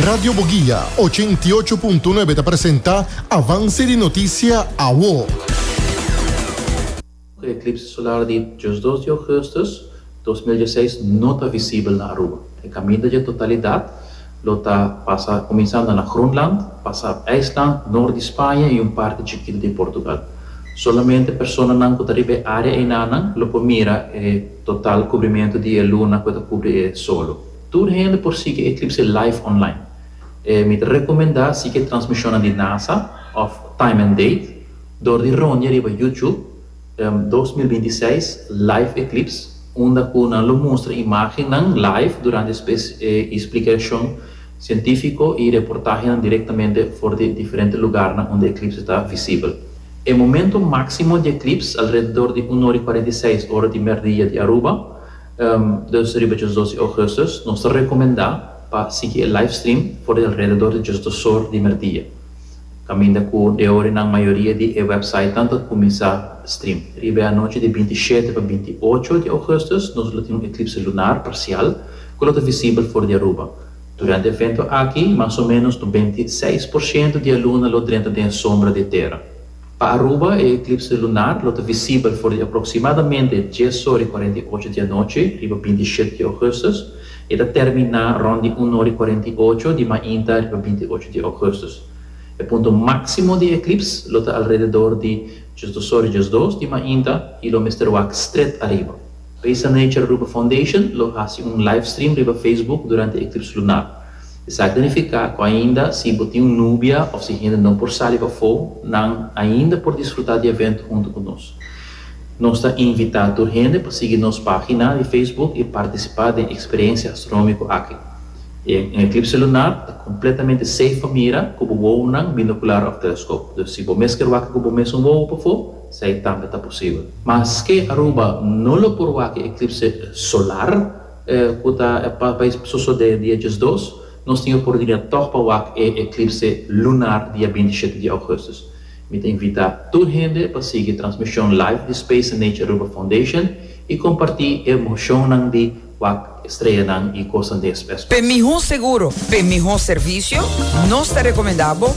Radio Boguia ochen i ocho punto nuebe ta presenta avanse di notisia awo. Un eklipse solar di djos dos di ougustus dos mil dieseis no ta visibel na Aruba. E kaminda dje totalidat lo ta pasa kuminsando na Groenland, pasa IJsland, nort di Spaña i un parti chikitu di Portugal. Solamente personanan ku ta riba e área einanan lo por mira e total kubrimentu di e luna ku e ta kubri e solo. Tur hende por sigui e eklipse live online. Mi ta rekomendá sigui e transmishonnan di nasa òf Time and Date dor di roña riba YouTube dos mil binti seis Live Eclipse unda ku nan lo mustra imágennan live durante spes i splikashon sientífiko i reportahenan direktamente for di diferente lugarnan unda e eklipse ta visibel. E momento máksimo di e eklips alrededor di un ora i kuarenta i seis ora di mèrdia di Aruba. Dus riba dje dos di Augustus nos ta rekomendá pa sigui e livestream for di alrededor di dje dos or di merdia, kaminda ku de ora nan mayoria di e wèpsaitnan ta kuminsá stream. Riba e anochi di binti shete pa binti ocho di Augustus nos lo tin un eklipse lunar parsial ku lo ta visibel for di Aruba. Durante e evento aki mas o ménos nobenta i seis por shento di e luna lo drenta den e sombra di e tera. Pa Aruba e eklipse lunar lo ta visibel for di aproksimadamente dies ora i kuarenta i ocho di anochi riba binti i shete di ougustus i e ta terminá rònt di un ora i kuarenta i ocho di mainta riba binti i ocho di ougustus. E punto máksimo di e eklips lo ta alrededor di dies dos ora dies dos di mainta i lo mester wak stret ariba. Paisa Nature Aruba Foundation lo hasi un livestream riba Facebook durante e eklips lunar. Esaki nifiká ku ainda si bo tin un nubia òf si hende no por sali pafó, nan ainda por disfrutá di evento huntu ku nos. Nos ta invitá tur hende pa sigui nos página di Facebook i partisipá den eksperensia astronómiko aki. E un eklipse lunar ta kompletamente seif pa mira ku bo wounan, binokular òf teleskop. Dus si bo mes kier wak ku bo mes un wou pafó, esei tambe ta posibel. Maske Aruba no lo por wak e eklipse solar, E ku ta e pa e sosode dia diesdos, nos tin e oportunidat tòg pa wak e eklipse lunar dia binti i shete di ougùstus. Mi ta invitá tur hende pa sigui e transmishon live di Space and Nature Aruba Foundation i kompartí e emoshonnan di wak e streanan i kosnan den e spespas. P'e mihó seguro, p'e mihó servisio, nos ta rekomendá bo